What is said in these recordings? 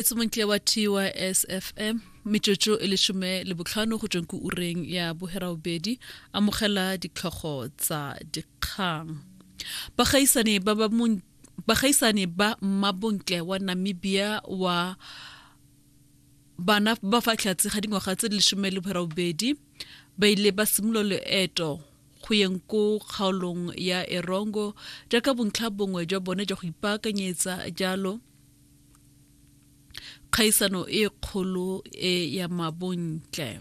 etse montle wa tysfm metsotso e lesome le botlhano go tsweng ko ureng ya bogerabobedi amogela ditlhogo tsa dikgang bagaisane ba ba bagaisane ba mmabontle wa namibia wa bana ba fa tlhatse ga dingwaga tse di lesome le bogerabobedi ba ile ba simolola loeto go yeng ko kgaolong ya erongo jaaka bontlha bongwe jwa bone jwa go ipaakanyetsa jalo kgaisano e kgolo e ya mabontle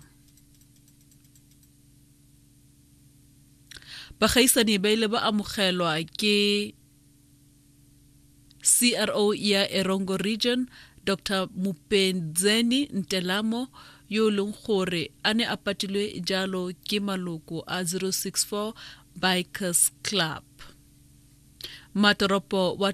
bagaisani ba ile ba amogelwa ke cro ya erongo region dr mupenzeni ntelamo yo e leng gore a ne a patilwe jalo ke maloko a 064 bikers club matoropo wa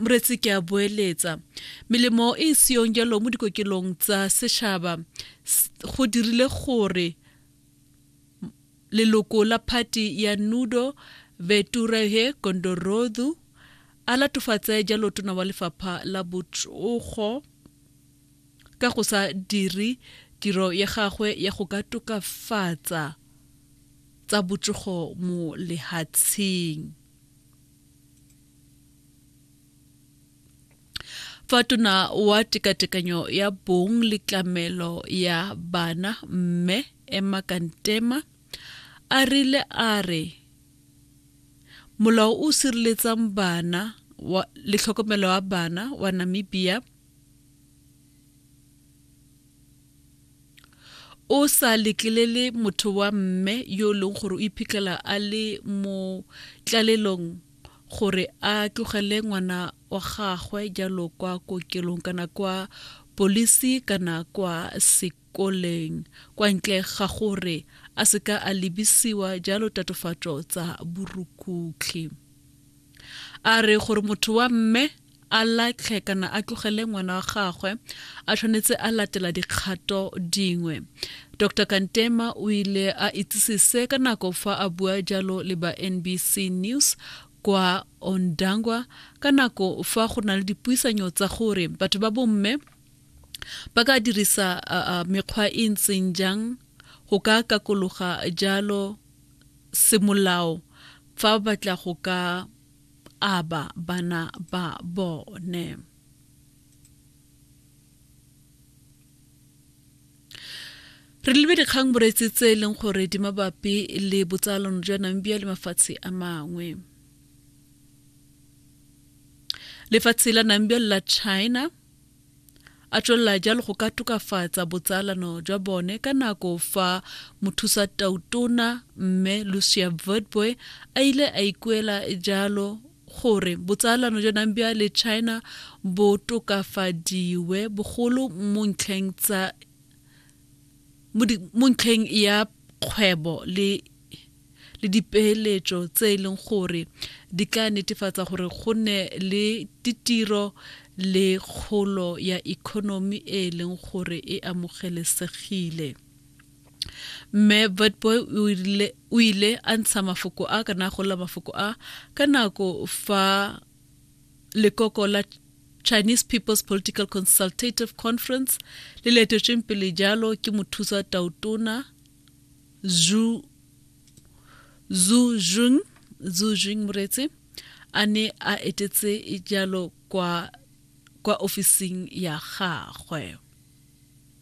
Moretsi ke a boeletsa. Melemo e e seyong jalo mo dikokelong tsa setšhaba go dirile gore leloko la phati ya Nudo Veturehe Gondorodhu a latofatse jalo tona wa lefapha la botsogo ka go sa dire tiro ya gagwe ya go ka tokafatsa tsa botsogo mo lehatsheng. fa tona wa tekatekanyo ya bong le tlamelo ya bana mme emma kantema a rile a re molao o sireletsang bana wa, le tlhokomelo ya bana wa namibia o sa letlelele motho wa mme yo e leng gore o iphitlhela a le mo tlalelong gore a tlogele ngwana wa gagwe jalo kwa kokelong kana kwa polisi kana kwa sekoleng kwa ntle ga gore a seka a lebisiwa jalo tatofatso tsa borukhutlhi a re gore motho wa mme a latlhe kana a tlogele ngwana wa gagwe a tshwanetse a latela dikgato dingwe dr kantema o ile a itsise se ka nako fa a bua jalo le ba nbc news kwa ondangwa ka nako fa go na le dipuisanyo tsa gore batho ba bomme ba ka dirisa mekgwa e ntseng jang go ka kakologa jalo semolao fa ba batla go ka aba bana ba bone. re lebe dikgang boreetsi tse e leng gore di mabapi le botsalano jwa namibia le mafatshe a mangwe lefatshe la namibia le la china A tswelela jalo go ka tokafatsa botsalano jwa bone ka nako fa Mothusatautona Mme Lucia Witbooi a ile a ikuela jalo gore botsalano jwa Nambia le China bo tokafadiwe bogolo mo ntlheng tsa mo ntlheng ya kgwebo le le dipeeletso tse e leng gore di ka netefatsa gore go nne le ditiro le kgolo ya economy e e leng gore e amogelesegile mme vetboy o ile a ntsha mafoko a kana go lla mafoko a ka nako fa Lekoko la Chinese People's Political Consultative Conference le letetsweng pele jalo ke mothusa tautona Zhu Zhu Jing Zhu Jing Muretse a ne a etetse jalo kwa kwa ofising ya gagwe.